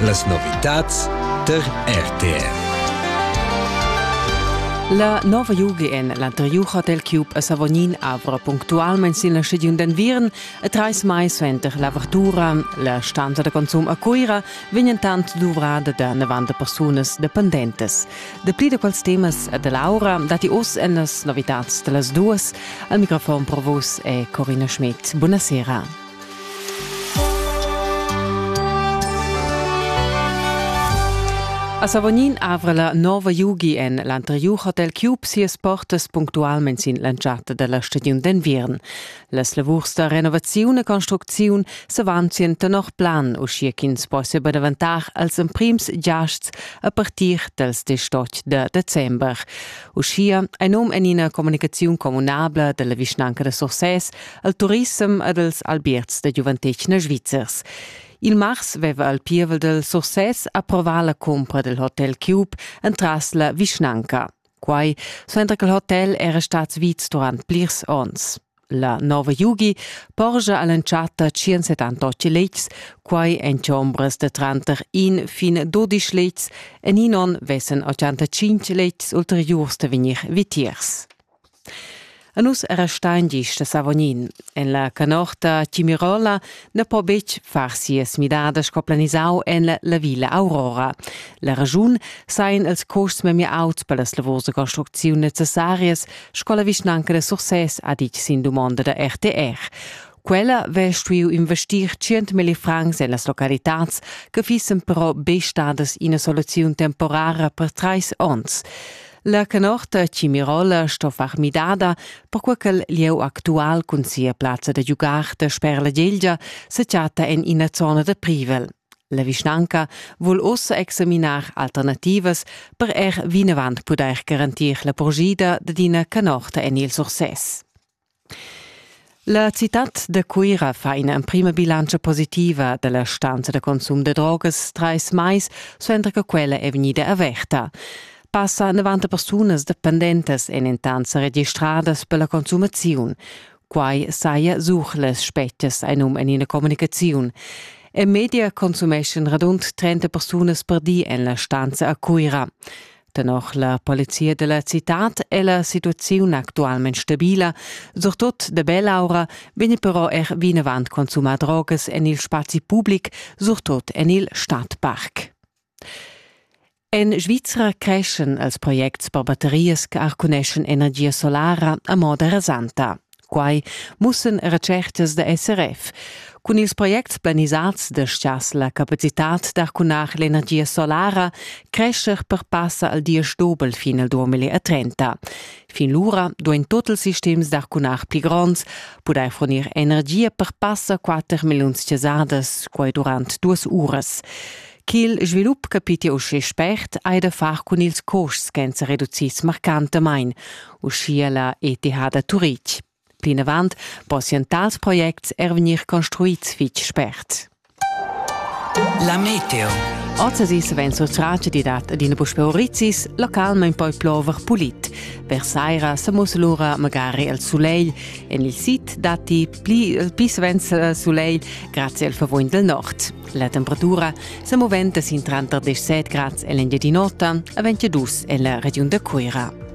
Las novitads tar RTR. La nova Jugi en l'anteriur hotel Cube a Savognin avra punctualment sin la stagiun d'enviern e trais mais suenter l'avertura. La stanza da consum a Cuira vegn entant duvrada da 90 persunas dependentes. Dapli da quels temas e da Laura datti oz en las novitads da las duas. Al microfon per vos è Corina Schmidt. Buonasera. A Savognin avra la nova Yugi en l'anteriur hotel Cube sias portas punctualment sin l'entschatta dalla stagiun d'enviern. Las lavurs da renovaziun e construcziun s'avanzien tenor plan, uschia ch'ins possia daventar als emprims giasts a partir dals 18 de december. Uschia ein um en ina communicaziun communabla dalla vischnanca da Sursès al turissem ed als albierts da giuventetgna svizzers. Il mars veva al pievel del Success approvà la compra del hotel Cube entras la vischnanca. Quai suenter che il hotel era stat vits durant plirs ons. La nova Yugi porgia all'entschatta 178 letgs, quai en chombras de tranter in fin 12 letgs, en in on vessen 85 letgs ulteriurs de vegnir vitiers. A nus era stein gist a Savognin. En la canorta Timirola ne po betg far sias midadas co planisau en la, la Villa Aurora. La ragiun sain els costs memia auts per las lavurs de construcziun necessarias, sco la vischnanca de Sursès ha ditg sin dumonda da RTR. Quella vè stuiu investir 100.000 francs en las localitads che fissen però be stadas ina soluziun temporara per trais onns. La canorta Cimirola sto far midada, perquai ch'el lieu actual cun sia plazza da giugar dasper la Gelgia se chatta en ina zona da privel. La vischnanca vul ossa examinar alternativas per er vinavant pudair garantir la porgida dad ina canorta en il Sursès. La citad da Cuira fa ina emprima bilantscha positiva dalla stanza da consum da drogas trais mais suenter che quella è vegnida averta. Passa 90 persunas dependentas èn entant sa registradas per la consumaziun. Quai saja sur las spetgas ein um en ina communicaziun. En media consumeschan radund 30 persunas per di en la stanza a Cuira. Tenor la polizia della citad è la situaziun actualmente stabila, surtut de Bell'aura vegn però er vinavant consumar drogas en il spazi public, surtut en il Stadtpark. En Svizra creschen als projects per batterias che arcuneschen energia solara a moda rasanta. Quai mussan retschertas da SRF. Cun ils projects planisads destiass la capacitat d'arcunar l'energia solara crescher per passa al diesch dobel fin al 2030. Fin lura duain tot ils sistems d'arcunar pli gronds pudair fornir energia per passa 4 milliuns cesadas quai durant duas uras. Ch'il svilup capitia uschè spert hai da far cun ils costs ch'èn sa reducids marcantamain, uschia la ETH da Turitg. Plinavant possian tals projects er vegnir construids fitg spert. La meteo. Ozasis vegn surtratg di dat adina puspe orizis, localment poi plover pulit. Versaira se mus lura magari al soleil. En il sid datti pli, pli svens soleil grazie al vervuogn del nord. La temperatura se moventa sin tranter 17 grads en l'Engiadin'Ota e 22 en la regiun da Cuira.